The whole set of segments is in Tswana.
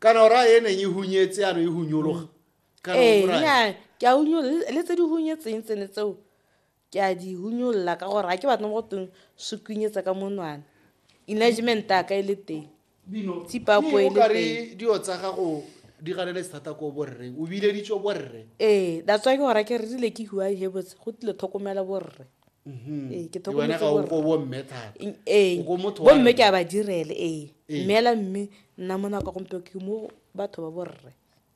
kana o raya e neng e hunyetse ano e hunyologa mm. kana ee, nyaa ke a hunyolola le tse di hunyetseng tsene tseo ke a di hunyolola ka gore ga ke batla mo go teng se kunyetsa ka monwana enagement a ka e le teng tsipapo e le teng dio tsa gago di ganele sethata ko borreng o bileditso borre ee that's why ke gore ke re rile ke huai he botse go tlile tlhokomela borre Mhm. Ee, ke Ke wena tlhokometse ga o borre. ko bomme thata ee O ko motho wa bomme rre. ke a ba direle ee Ee. mme ela mme nna mo nako ya gompieno ke mo batho ba borre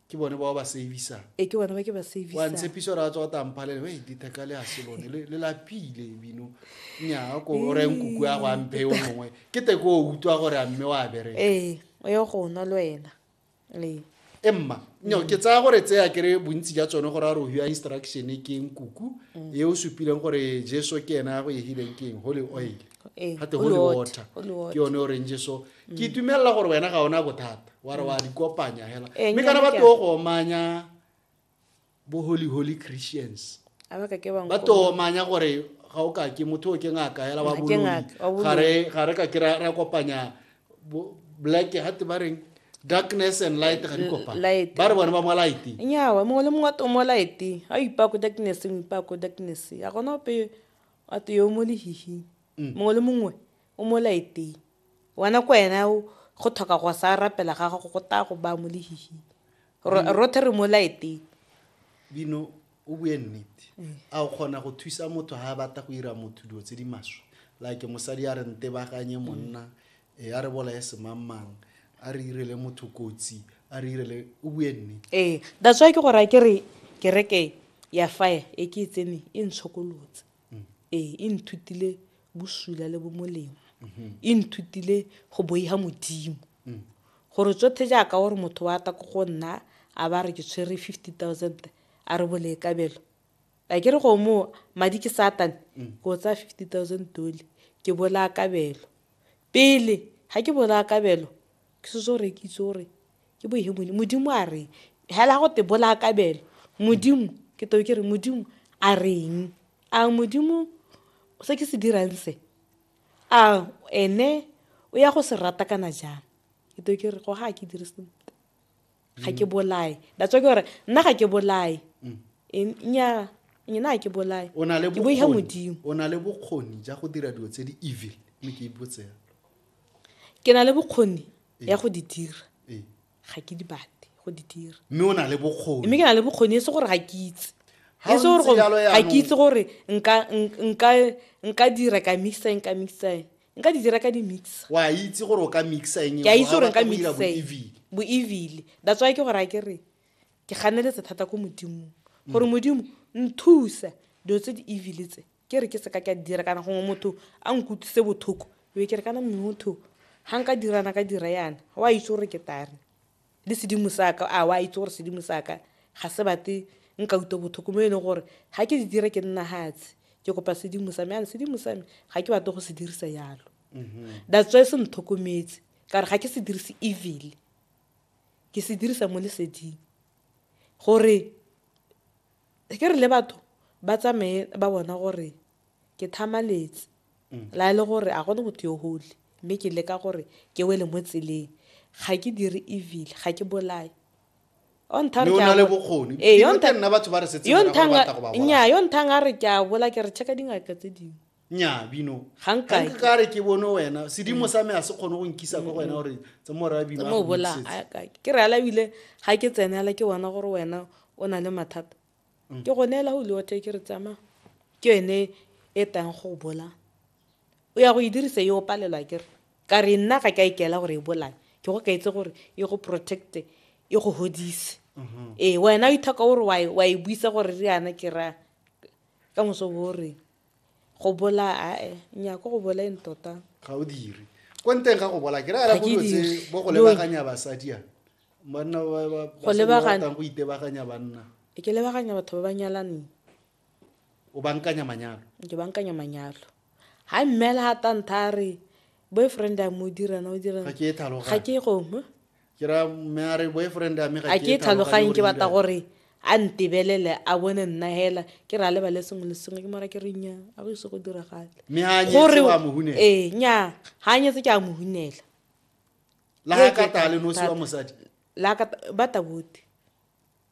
ke bone bao ba savisa ee ke bone ba ke ba wa savisa ntshepiso ra tswa tamphalele we ditheka le a selone le le lapile bino nya ko o reng kuku ya go ampe yo mongwe ke te ko o utlwa gore a mme wa bereka ee o ye go nwa le wena e mma no ke tsaya gore tseya kere bontsi ja tsone gore a re ohiwa instruction ke eng kuku mm. e o supileng gore jesu ke ena ya go egileng ke eng holy oil eh, gate holy water ke yone o reng jesu mm. ke itumelela gore wena ga ona bothata wa re wa mm. di kopanya hela eh, mme kana ba teo go omanya bo holy holy christians a ba ka ke ba ba nkoma. tomanya gore ga o ka ke motho o ke ngaka hela wa Ga ke boloi ngaka, wa boloi. ga re ga re ka ke ra ra kopanya bo- black ga te ba reng darkness and light ga di kopana light. ba re bone ba mo light nyawa mongwe le mongwe a tomo lighting a o ipaya ko darknesseng o ipaya ko darknesseng a gona ope a te yo mo lehihing mongwe le mongwe O mo laeteng. Wena ko ena go thoka go sa rapela ga gago go taya go baya mo lehihing. Rothe re mo laeteng. Bino, o bue nnete. A o kgona go thusa motho ha a bata go ira motho dilo tse di maswe. Like mosadi a re ntebaganye monna, e a re bolaye semangmang, a re irele motho kotsi, a re irele o bue nnete. Ee, that's why ke go raya ke re kereke ya fire e ke e tseneng e ntshokolotse. mm. ee e nthutile bosula le bomolemo mm-hmm. e nthutile go boiga modimo mm. gore tsotlhe jaaka gore motho wa ta ko go nna a ba re ke tshwere fifty thousand a re bolekabelo a ke re go moo madi ke satane mm. ke o tsaya fifty thousand dole ke bolakabelo pele ga ke bolakabelo ke setse gore ke itse gore ke bo he modimo modimo a reng hela go te bola kabelo modimo ke to ke re modimo a reng a modimo se ke se dirang se a ene o ya go se rata kana jang ke to ke re go ga ke dire sentle ga ke bolae that's why ke gore nna ga ke bolae mm. e, nya nyena ga ke bolae ke boihe modimo o na le bokgoni ja go dira dilo tse di evil mme ke ipotsela ke na le bokgoni ya go di dira Ee. ga ke di bate go di dira mme o na le bokgoni mme ke na le bokgoni e se gore ga ke itse Ha e se o gore ntse go- jalo ga jaanong- ke itse gore nka nk- nka nka dira ka mixa eng ka mixa eng nka di dira ka di mixa wa itse gore o ka mixa eng ke a itse gore nka mixa eng evile bo evile that's why ke gore a ke re ke ganeletse thata ko modimong gore modimo nthusa dilo tse di evile tse ke re ke seka ka dira kana gongwe motho a nkutlwise bothoko be ke re kana motho ga nka dirana ka dira yana o a itse gore ke tare le sedimo saka a o a itse gore sedimo saka ga se bate nka utlwa bothoko mo e leng gore ga ke di dire ke nna gatshe ke kopa sedimo sa me yana sedimo sa me ga ke batle go se dirisa yalo mhm. that's why se ntlhokometse ka re ga ke se dirise evil ke se dirisa mo leseding gore Ke re le batho ba tsamaye ba bona gore ke thamaletse, la e le gore a gone motho yo holy, mme ke leka gore ke wele mo tseleng. Ga ke dire evil, ga ke bolaye. Yo nthang Mme o na le bokgoni. Ee, yo Dingwe tse nthang- nna batho ba re setse yo morago ba nthang batla go ba bolaya. nnyaa yo nthang a re ke a bola ke re check-a dingaka tse dingwe nya bino ga nka ka re ke bone wena sedimo sa me a se kgone go nkisa kwa wena gore tse mo ra bino mo bola ke re ala bile ga ke tsenela ke bona gore wena o na le mathata mm. ke go neela go leote ke re tsama ke yone e tang go bola o ya go e dirisa yo palelwa ke re ka re nna ga ka ikela gore e bolae ke go ka itse gore e go protecte e go hodise mm-hmm. ee wena o ithaka gore wa e buisa gore re yana ke ra ka moso bo reng go bola ae nya ko go bolaeng tota ga o dire ko nteng ga go bola ke raya bo tse bo go lebaganya basadi a banna ba ba go lebaganya go itebaganya banna e ke lebaganya batho ba ba nyalaneng o bankanya manyalo ke bankanya manyalo ha mmela ha tantha re boyfriend a mo dirana o dirana ga ke e thalo ga ke go mo ke ra me a re boyfriend a me ga a ke tlhaloganye ke batla gore a ntebelele a bone nna hela ke ra lebale sengwe le sengwe ke mara ke re nya a go ise go diragale gore ee nya ga a nyetse ke a mohunela la ka tale nosi wa mosadi la ka ba tabote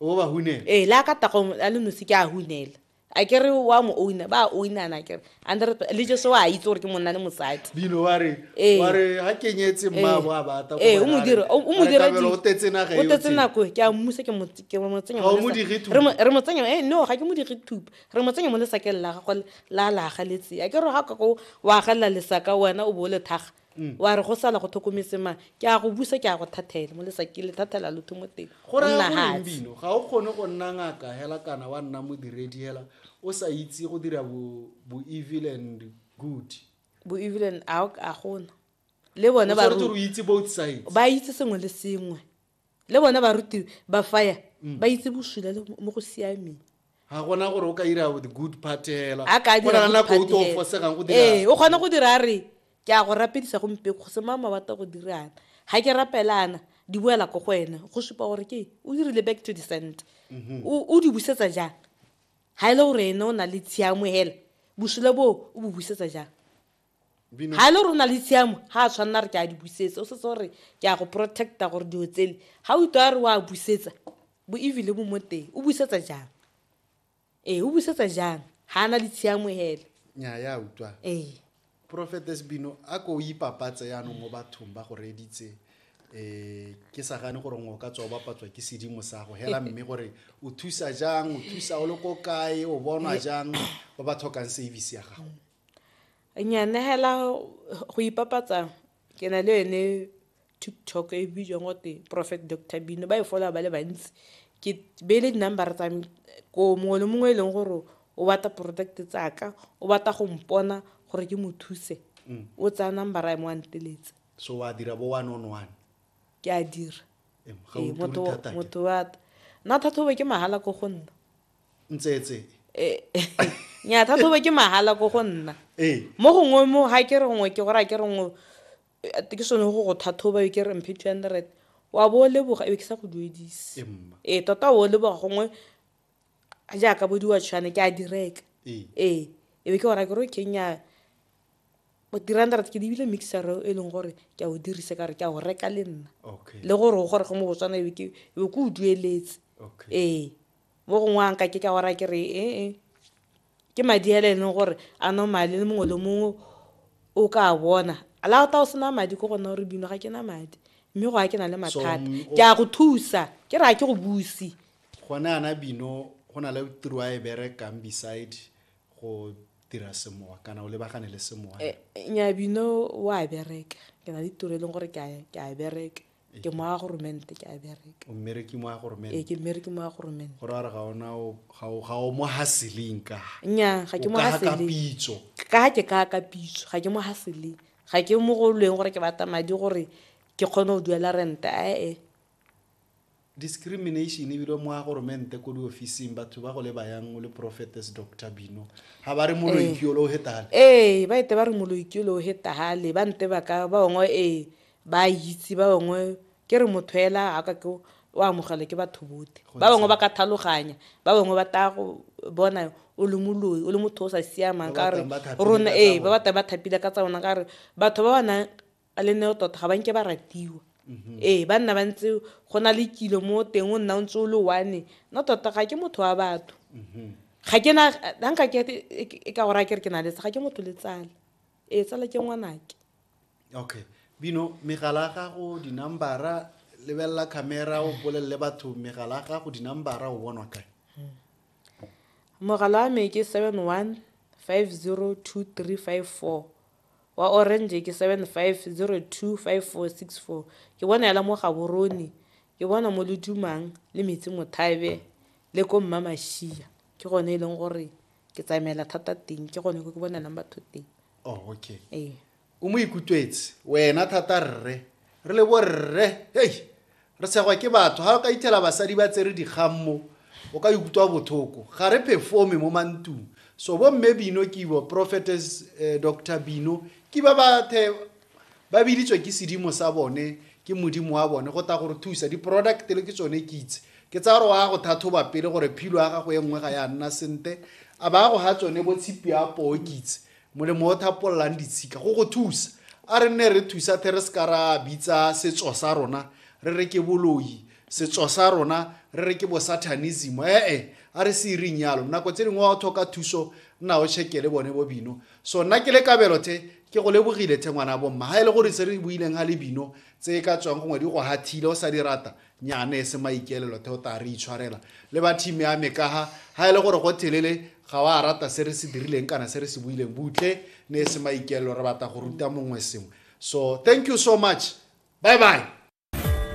o ba hunela ee le a ka tagong a le nosi ke a hunela a ke re wa mo owna ba a ownana kere ande re le jeso wa a itse gore ke monna le mosadi bino wa re ee. wa re ha kenyetse mmabo a bata ee o mo dira o mo dira o tetse naga o tetse nako ke a mmusa ke mo ke mo tsenya mo mo digi thupa re mo tsenya ee no ga ke mo digi thupa re mo tsenya mo le sakeng la gago la la galetse a ke re ha ka go wa galla le saka wena o bo le thaga mm. wa re go sala go tlhokometse mang ke a go busa ke a go thathela mo lesa ke le thathela lo mo teng go nna hatsi ga o kgone go nna ngaka hela kana wa nna modiredi hela o sa itse go dira bo bo evil and good bo evil and a a gona le bone ba itse both sides ba itse sengwe le sengwe le bona barutiwe ba faya mm. ba itse bosula le mo go siameng ga gona gore o ka ira the good part hela a ka dira nako o to fosegang go dira eh o kgona go dira re ke a go rapedisa go mpe go se mama wa go dirana ga ke rapelana di boela ko go wena go supa gore ke o dirile back to the center mhm. o di busetsa jang ga e le gore ene o na le tshiamo hela bosula boo o bo busetsa jang ga e le rona le tshiamo ga a tshwanela re ke a di busetsa o setse gore ke a go protecta gore dilo tsele ga o itwa re o a busetsa bo evile bo mo teng o busetsa jang ee o busetsa jang ga a na le tshiamo hele nya ya utlwa ee profetes bino a ko o ipapatse yanong mo bathong ba go reeditse um ke sa gane gore ngwe o ka tswa o bapatswa ke sedimo sa go hela mme gore o thusa jang o thusa o le ko kae o bonwa jang ba ba tlhokang service ya gago Nya nehela go ipapatsa ke na le yone TikTok e bidiwang gote Prophet Doctor Bino ba e followa ba le bantsi. Ke beile di-number tsa me ko mongwe le mongwe e leng gore o batla product tsaka o batla go mpona gore ke mo thuse o tsaya number ya me wa nteletsa. So wa dira bo one on one. Ke a dira. Ga o turi thata. Motho wa nna thathobo ke mahala ko go nna. ntsetse eh, nya thathobe ke mahala ko go nna eh. mo gongwe mo ga ke re gongwe ke gore a ke re ngwe eh, ke sone go go thathoba yo ke re mphe two hundred wa bo o leboga ebe ke sa go duedise ee tota o leboga gongwe jaaka bo diwatshwane ke a direka ee ebe ke ora ke re kenya three hundred ke dibile mixer e leng gore ke a o dirise ka re ke a o reka le nna le gore o gore go mo botswana ebe ke o dueletse ee mo gongwe a nka ke ka wara ke re ee ke madi a le leng gore a normale le mongwe le mongwe o ka bona la o ta o sena madi ko gona gore bino ga ke na madi mme go a ke na le mathata ke a go thusa ke re a ke go busi gone ana bino go na le tiro a e berekang beside go dira semowa kana o lebagane le semowa eh, eh, nya bino o a bereka ke na le tiro e leng gore ke a bereka ke mo ya goromente ke a bereka o mmereki mo ya ee goromente ke mmereke mo ya goromente go raya gore ga ona o- ga o- ga o mo haseleng ka nya ga ke mo ka haseleng pitso ka ke ka ka pitso ga ke mo haseleng ga ke mo go lweng gore ke batla madi gore ke kgone go duela rente ae discrimination ebile mo ya goromente ko diofising batho ba go le bayang o le prophetess dr bino ga ba re moloikiolo o hetale ee ba ete ba re moloikiolo o hetagale ba nte ba ka ba ongwe ee ba a itse ba bangwe ke re motho ela a ka ke o amogelwa ke batho bote ba bangwe ba ka thaloganya ba bangwe ba taya go bona o le moloi o le motho o sa siamang ka re rona ee ba batla ba thapile ka tsa bona ka re batho ba ba nang le neo tota ga ba nke ba ratiwa mhm. ee ba nna ba ntse go na le kilo mo teng o nna o ntse o le one no tota ga ke motho wa batho mhm. ga ke na ga nka ke e ka go raya ke re ke na letse ga ke motho le tsala Ee, tsala ke ngwanake. Okay. Bino, megala ya gago, dinambara, lebelela camera o bolelele batho megala ya gago, dinambara o bonwa kae? Mogala wa me ke 71502354 wa orange ke 75025464 ke bona yala mo Gaborone ke bona mo Ledumang le Metsi Mothabe le ko Mmamashia ke gone e leng gore ke tsamaela thata teng ke gone ko ke bonelang batho teng oh okay ee o mo ikutlwetse wena thata rre re le borre hei re segwa ke batho ga o ka ithela basadi ba tsere dikgammo o ka ikutlwa bothoko ga re performe mo mantung so bomme bino kibo prophetess eh, dr bino ke ba bathe ba biditswe ke sedimo sa bone ke modimo wa bone go ta gore thusa di-product le ke tsone kitse ke tsa gore wa go thathoba pele gore philo ya gago e nngwe ga ya nna sente a ba go ga tsone bo tshipi ya poo kitse molemo o thapololang ditshika go go thusa a re nne re thusa the re se ka ra bitsa setso sa rona re re ke boloi setso sa rona re re ke bosathanism ee a re se ireng yalo nako tse dingwe wa o tlhoka thuso nna o check le bone bo bino so nna ke le kabelo the ke go lebogile the ngwana bomma ga e le gore se re buileng ga le bino tse e ka tswang gongwe di go hathile o sa di rata nyane e se maikelelo the o ta re itshwarela le ba team ya me kaga ga e le gore go thelele ga wa rata se re se dirileng kana se re se buileng butle ne e se maikelelo re batla go ruta mongwe sengwe so thank you so much bye bye